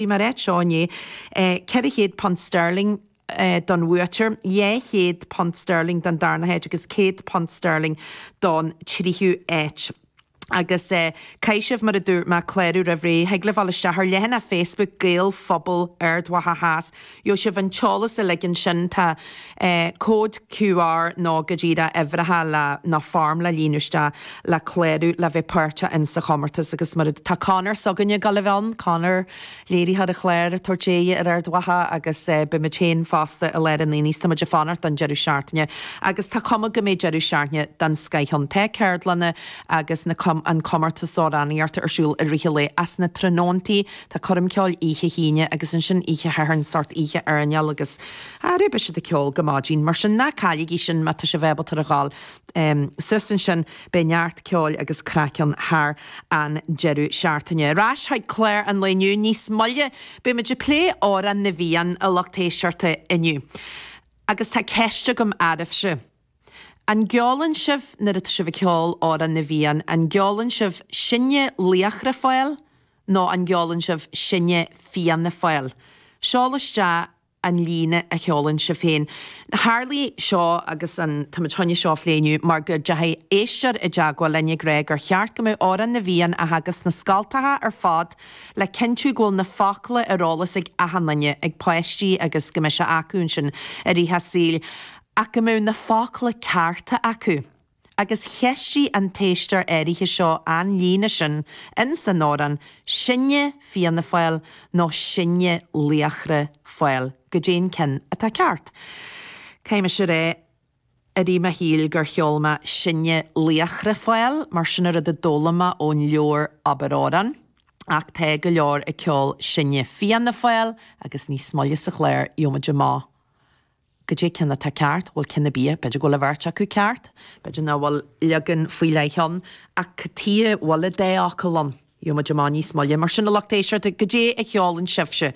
Bhí mar áit seo inné. Ceithre chéad punt sterling don bhuaiteoir, dhá chéad punt sterling don darna háit agus céad punt sterling don tríú háit. Agus caithfidh sibh, mar a dúirt mé, clárú roimh ré. Thig libh dul isteach ar leathanach Facebook Gaelphobal Ard Mhacha Theas Gheobhaidh sibh an t-eolas uilig ansin. Tá cód QR nó go díreach uimhreacha le nó foirm le líonadh isteach le clárú le bheith páirteach insa chomórtas agus mura Tá Conor s'againne ag dul a bheith ann, Conor, léiritheoir an chláir ag tabhairt aghaidh ar Ard Mhacha agus beidh muid féin fosta i lár an aonaigh 's tá muid ag fanacht don deireadh seachtaine agus tá cuma go mbeidh deireadh seachtaine den scoith ann. Tá ceardlanna agus na an comórtas amhránaíochta ar siúl i rith an lae is na tráthnóntaí Tá coirm cheoil oíche hAoine agus ansin oíche Shathairn sórt oíche airneáil agus arae beidh siad ag ceol go maidin, mar sin ná cailligí sin má tá sibh ábalta a ghabháil suas ansin, beidh neart ceoil agus craic ann thar an deireadh seachtaine. Ar ais chuig clár an lae inniu, níos moille beidh muid ag plé Amhrán na bhFiann a lucht éisteachta inniu. Agus tá ceist agam oraibhse. An gceolann sibh nuair atá sibh ag ceol Amhrán na bhFiann, an gceolann sibh Sinne Laochra Fáil? nó an gceolann sibh sinne Fianna Fáil? Seol isteach an líne a cheolann sibh féin. Tharlaigh seo agus an táimid chun é seo a phlé inniu mar go deachaigh éisteoir i dteagmháil linn ag rá gur cheart go mbeadh Amhrán na bhFiann á theagasc sna scoltacha ar fad le cinntiú go bhfuil na focla ar eolas ag achan duine, ag páistí agus go mbeidh sé acu ansin i rith a saoil ach go mbeadh na focla cearta acu. agus cheistigh an t-éisteoir áirithe seo an líne sin ins an amhrán, 'Sinne Fianna Fáil nó sinne laochra Fáil', goidé'n ceann atá ceart? Caithfidh mise a rá i rith mo shaoil gur cheol mé 'Sinne Laochra Fáil' mar sin an rud a d'fhoghlaim mé ón leabhar Abair Amhrán, ach tá go leor ag ceol 'Sinne Fianna Fáil' agus níos moille sa chlár gheobhaidh muid amach goidé'n ceann atá ceart, bhuel cinn a bíodh, b'fhéidir go bhfuil an bheirt acu ceart, b'fhéidir nach bhfuil leagan faoi leith ann, ach tia, bhuel a dtéácadh liom, gheobhaidh muid amach níos moille, mar sin a lucht éisteachta, goidé a cheolann sibhse,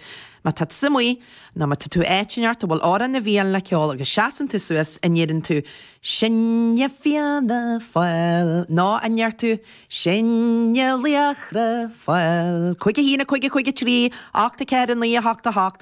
má tá tusa amuigh, nó má tá tú áit inteacht a bhfuil amhrán na bhFiann le ceol agus seasann tú suas an ndeireann tú, Sinne Fianna Fáil, nó an ndeir tú, Sinne Laochra Fáil, 51 50 53 84 98 8.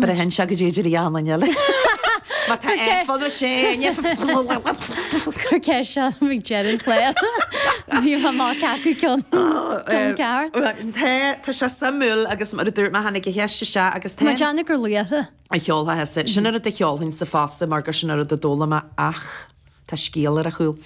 Braitheann sé goidé Dlí Anna Neil. Má tá F agus sé in F. Cuir ceist seo liom ag deireadh an chláir. Bhí mé má ceapadh ceann ceann ceart. Tá tá sé suimiúil agus mar a dúirt mé tháinig an cheist isteach agus tá mé ag déanamh gur laochra a cheolfadh. Sin an rud a cheolfainnse fosta mar gur sin an rud a d'fhoghlaim mé ach. Tá scéal ar a chúl.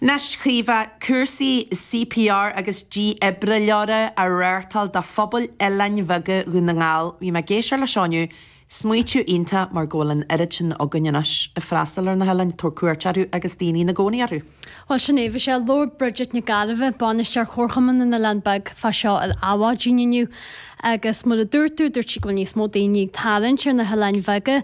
Anois, a Chaoimhe, cúrsaí CPR agus dífhibrileora á reáchtáil do phobail oileáin bheaga Dhún na nGall. Bhí mé ag éisteacht leis inniu, smaoitiú iontach mar go bhfuil an oiread sin againn anois ag freastal ar na hoileáin, ag tabhairt cuairt orthu agus daoine ina gcónaí orthu. Bhuel, sin é. Bhí sí ag labhairt Bridget Nic Gairbheith, bainisteoir Chomharchumann na nOileán Beag, fá seo ar Adhmhaidin inniu agus mar a dúirt tú, dúirt sí go bhfuil níos mó daoine ag tarraingt ar na hoileáin bheaga,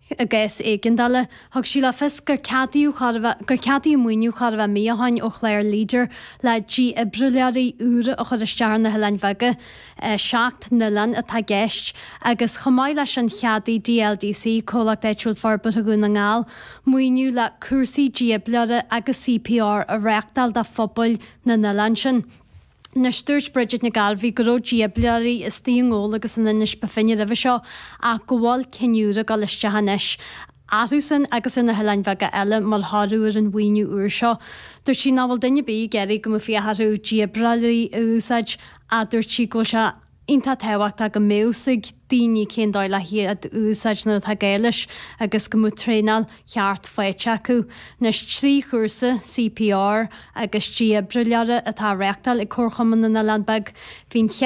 I gcás éigeandála, thug sí le fios gur cea gur ceadaíodh maoiniú chóir a bheith mí ó shin ó chlár Leader le dífhibrileoirí úra a chur isteach ar na hoileáin bheaga, seacht n-oileán atá i gceist, agus chomh maith leis sin cheadaigh DLDC, Comhlacht Áitiúil Forbartha Dhún na nGall, maoiniú le cúrsaí dífhibrileora agus CPR a reáchtáil do phobail na n-oileán sin. Anois, dúirt Bridget Nic Gairbheith go raibh dífhibrileoirí istigh i nGabhla agus in Inis Bó Finne roimhe seo ach go bhfuil cinn úra ag dul isteach anois orthu sin agus ar na hoileáin bheaga eile mar thoradh ar an mhaoiniú úr seo. Dúirt sí nach bhfuil duine ar bith ag iarraidh go mbeadh féith orthu dífhibrileoirí a úsáid ach dúirt sí go bhfuil sé iontach tábhachtach go mbeadh a fhios ag daoine cén dóigh le hiad a úsáid má tá gá leis agus go mbeadh traenáil cheart faighte acu. Anois trí chúrsa CPR agus dífhibrileora atá á reáchtáil ag Comharchumann na nOileán Beag, bhí an